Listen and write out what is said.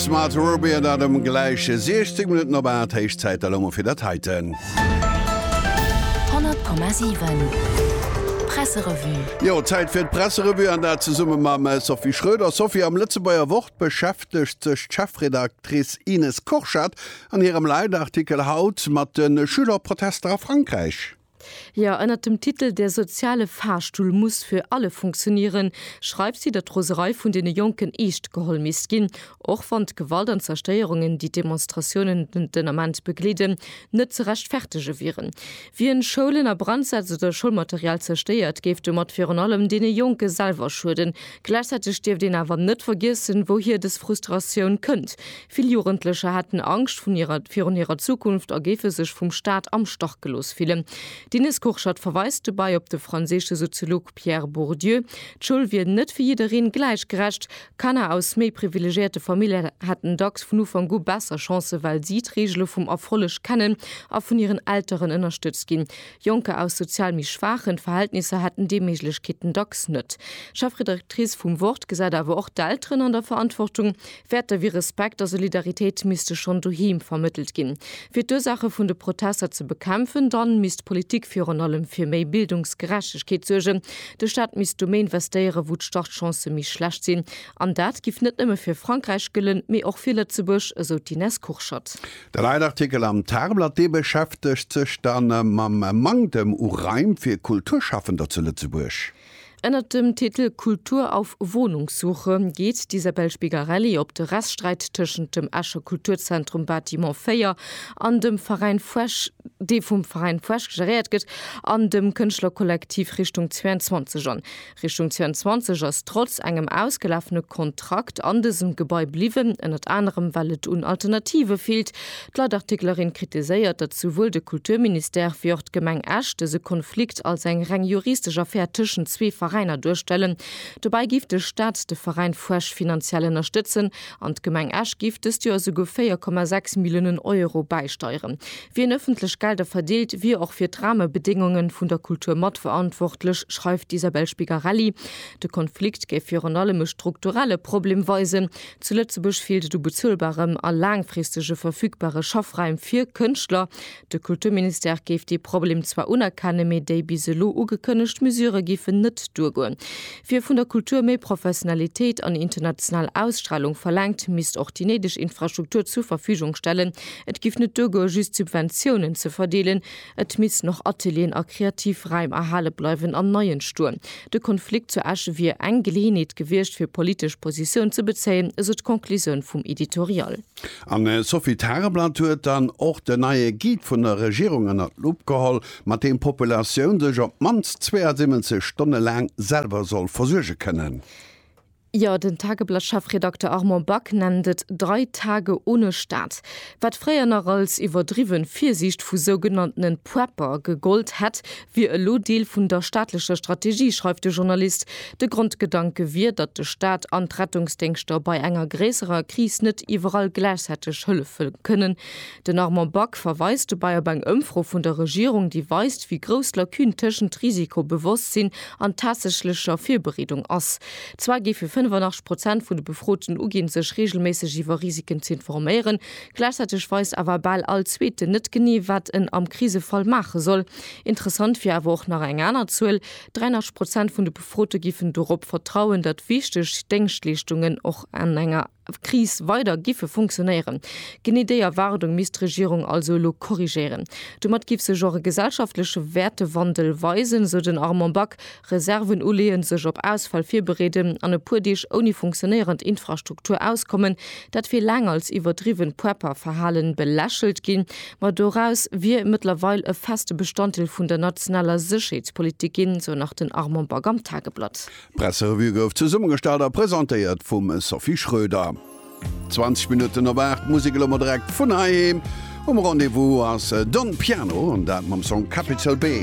Smart Robea dat ëm gläich 16 Minutten op 8, héich Zäit elo mol fir dat heiten. 100,7 Presserevue. Jo, Zäit fir d'Presserevue, an dat zesumme mam Sophie Schröder. Sophie, am Lëtzebuerger Wort beschäftegt sech d'Chefredactrice Ines Korchat an hirem Leitartikel haut mat de Schülerprotester a Frankräich. Jo, ënnert dem Titel Der soziale Fahrstuhl muss für alle funktionieren schreift si, datt d'Roserei vun deene Jonken eescht geholl misst ginn, och wann d'Gewalt an d'Zerstéierungen, déi d'Demonstratiounen den Ament begleeden, net ze rechtfertege wieren. Wien Schoulen a Brand setzt oder Schoulmaterial zerstéiert, géif domat virun allem deene Jonke selwer schueden. Gläichzäiteg dierft een awer net vergiessen, wouhier dës Frustratioun kënnt. Vill Jugendlecher hätten Angscht vun hirer virun hirer Zukunft a géife sech vum Staat am Stach gelooss fillen. D'Ines Kurschat verweist dobei op de franséische Soziolog Pierre Bourdieu, d'Schoul wier net fir jiddereen gläich gerecht. Kanner aus méi privilegierte Familljen hätten dacks vun Ufank u besser Chancen, well si d'Reegele vum Erfolleg kennen a vun hiren Elteren ënnerstëtzt ginn. Jonker aus sozial méi schwaachen Verhältnisser hätten déi Méiglechkeeten dacks net. D'Chefredaktrice vum Wort gesäit awer och d'Elteren an der Verantwortung, Wäerte wéi Respekt a Solidaritéit misste schonn doheem vermëttelt ginn. Fir d'Ursaache vun de Protester ze bekämpfen, dann misst d'Politik virun allem fir méi Bildungsgerechtegkeet suergen. De Staat misst do méi investéieren, wou d'Startchancë méi schlecht sinn. An dat giff net nëmme fir Frankräich gëllen, mee och fir Lëtzebuerg, esou d'Ines Kurschat. De Leitartikel am Tageblatt, dee beschäftegt sech dann mam Manktem u Raim fir Kulturschaffender zu Lëtzebuerg. Ënnert dem Titel Kultur auf Wohnungssuche geet d'Isabel Spigarelli op de Rechtssträit tëschent dem Escher Kulturzentrum Bâtiment 4 an dem Veräin Fuesch, dee vum Veräin Fuesch geréiert gëtt, an dem Kënschtlerkollektiv Richtung 22 an. Richtung 22 ass trotz engem ausgelafene Kontrakt an dësem Gebai bliwwen, ënnert anerem well et un Alternative feelt, D'Leitartiklerin kritiséiert, datt souwuel de Kulturministère wéi och d'Gemeng Esch dëse Konflikt als eng reng juristesch Affär tëschent zwee Veräiner duerstellen. Dobäi géif de Staat de Veräin Fuesch finanziell ënnerstëtzen an d'Gemeng Esch géif dëst Joer esouguer 4,6 Milliounen Euro bäisteieren. Wien ëffentlech Gelder verdeelt, wier och fir d'Rahmebedéngunge vun der Kultur matverantwortlech, schreift d'Isabel Spigarelli. De Konflikt géif virun allem e strukturelle Problem weisen, Zu Lëtzebuerg feelt et u bezuelbarem a laangfristege verfügbare Schaffraim fir Kënschtler. De Kulturministère géif dee Problem zwar unerkennen, mee déi bis elo ugekënnegt Mesure géifen net duergoen. Wie vun der Kultur méi Professionalitéit an international Ausstralung verlaangt, misst och déi néideg Infrastruktur zur Verfügung stellen. Et géif net duergoen, just Subventiounen ze verdeelen. Et missten och Atelieren a kreativ Räim erhale bleiwen an nei entstoen. De Konflikt zu Esch wier eng Geleeënheet gewiescht, fir politesch Positioun ze bezéien, esou d'Conclusioun vum Editorial. An d'Sophie Tareblatt huet dann och den neie Guide vun der Regierung ënner d'Lupp geholl, mat deem d'Populatioun sech op d'mannst 72 Stonne laang selwer soll versuerge kënnen. Jo, den Tageblatt-Chefredakter Armand Back nennt et drei Tage ohne Staat, wat fréier nach als iwwerdriwwen Virsiicht vu sougenanntenen Prepper gegollt hätt, wier elo Deel vun der staatlecher Strategie, schreift de Journalist. De Grondgedanke wier, datt de Staat an d'Rettungsdéngschter bei enger gréisserer Kris net iwwerall gläichzäiteg hëllefe kënnen. Den Armand Back verweist dobäi op eng Ëmfro vun der Regierung, déi weist, wéi grouss d'Lacune tëschent Risikobewosstsin an tatsächlecher Virbereedung ass. Zwar géife 85 Prozent vun de Befroten uginn, sech reegelméisseg iwwer Risiken ze informéieren, gläichzäiteg weist awer bal all Zweeten net genee, wat en am Krisefall maache soll. Interessant wier awer och nach eng aner Zuel, 83 Prozent vun de Befrote géifen dorop vertrauen, datt wichteg Déngschtleeschtungen och an enger. Kris weider giffe funktionéieren. Genee déi Erwaardung misst d'Regierung also elo korrigéieren. Domat giff sech och e gesellschaftleche Wäertewandel weisen, esou den Armand Back. Reserven uleeën, sech op Ausfäll virbereeden an e puer Deeg ouni funktionéierend Infrastruktur auskommen, dat wier laang als iwwerdriwwen Prepper-Verhalen belächelt ginn, ma doraus wier mëttlerweil e feste Bestanddeel vun der nationaler Sécherheetspolitik ginn, esou nach den Armand Back am Tageblatt. D'Presserevue gouf zesummegestallt a presentéiert vum Sophie Schröder. 20 Minutten op 8, Musek elo mol direkt vun heiheem. Um Rendez-vous ass Don Piano, an dat mam Song Capital B.